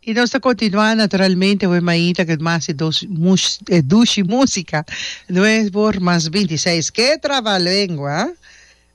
I nos ta kontinuá naturalmente awe mainta ke mas e dos mus e dushi músika noe por mas binti seis ke trabalengua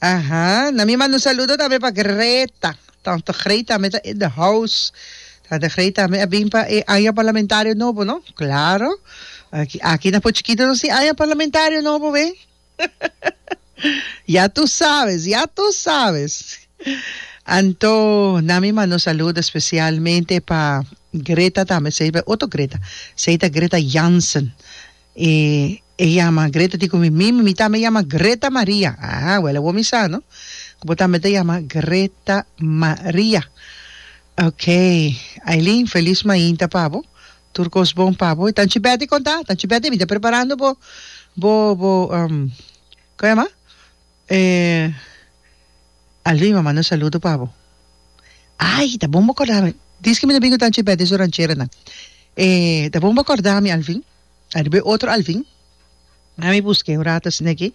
aha na mi manda un saludo tambe pa Greta tante Greta tambe ta in the house tante Greta tambe a bin pa e aña parlamentario nobo no klaro aki aki na Pochokito nos tin aña parlamentario nobo wei. Ya tu sabes, ya tu sabes. Anto nan mi manda un saludo especialmente pa Greta tambe, esei ta otro Greta, esei ta Greta Jansen. E e yama Greta di cu mi, mimi mi tambe yama Greta Maria. Ah, wel awor mi sa no cu bo tambe ta yama Greta Maria. Okay, Ailin feliz mainta pa bo. Tur kos bon pa bo. Tanchi Betty konta, tanchi Betty mi ta preparando bo bo bo um ko yama e Alvin a manda un saludo pa bo. Ay ta bon bo korda mi dis ke mi ta bin ku tanchi Betty su rancheranan e ta bon bo korda mi Alvin ariba e otro Alvin a mi buske un rato asina aki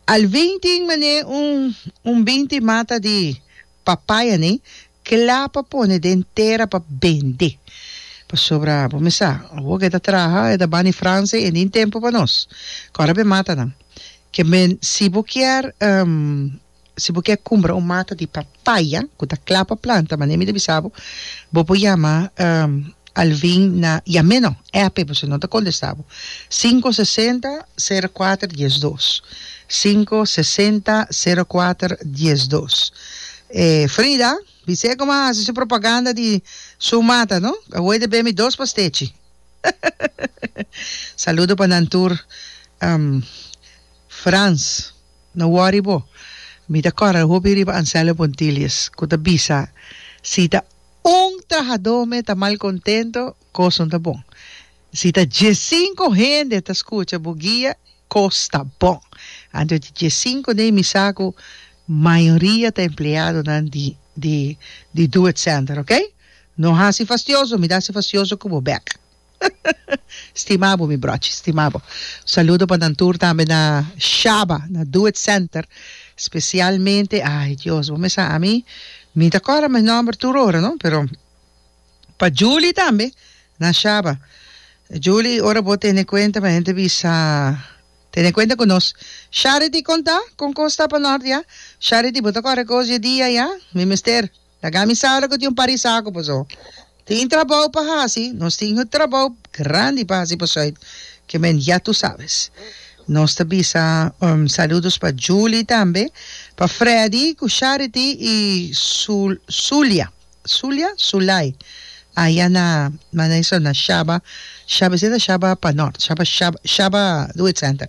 Alvin tin mane un un binti mata di papaya nen cla pa pone den tera pa bende pasobra bo mi sa awo ke ta traha e ta bani franse e nin tempo pa nos kor a be mata nan ke men si bo kier si bo kier cumbra un mata di papaya ku ta cla pa planta manera mi ta bisa bo bo por yama Al vin na yam'é no app pues no ta contesta bo cinco sesenta cero cuater dies dos cinco sesenta cero cuater dies dos e Frida bis'é como a haci su propaganda di su mata no awor ta bemi dos pastechi saludo pa nan tur Frans. No wori bo. Mi ta kòrda hopi riba Anselmo Pontilius ku ta bisa, Si ta un trahadó me ta malkontento, kos no ta bon. Si ta diesinko hende ta skucha bo guia, kos ta bon. Anto di diesinko den mi sa ku mayoria ta empleadonan di di di do-it-center, oke? No hasi fastioso, mi ta hasi fastioso ku bo bèk. Stima bo mi brochi, stima bo. Saludo pa nan tur tambe na Shaba, na Do It Center, specialmente, ay Dios, bo mes sa ami, mi ta cordanan e nomber tur ora no, pero pa Julie tambe na Shaba. Julie, ora bo tene cuenta mi henter bisa, tene cuenta cu nos. Sharity, conta con cos ta panordia? Sharity, bo ta corda cos dje dia ya? Mi mester. Ta gamisado cu tin un parisaco paso tin trabao pa haci, nos tin un trabao grandi pa haci pasoy que men ya tu sabes. Nos ta bisa un saludos pa Julie tambe, pa Freddy cu Charity y Zulia, Zulia? Zulay aya na Manaiso na Shaba, Shaba esey ta Shaba pa Nort, Shaba Shaba Shaba Doe Center.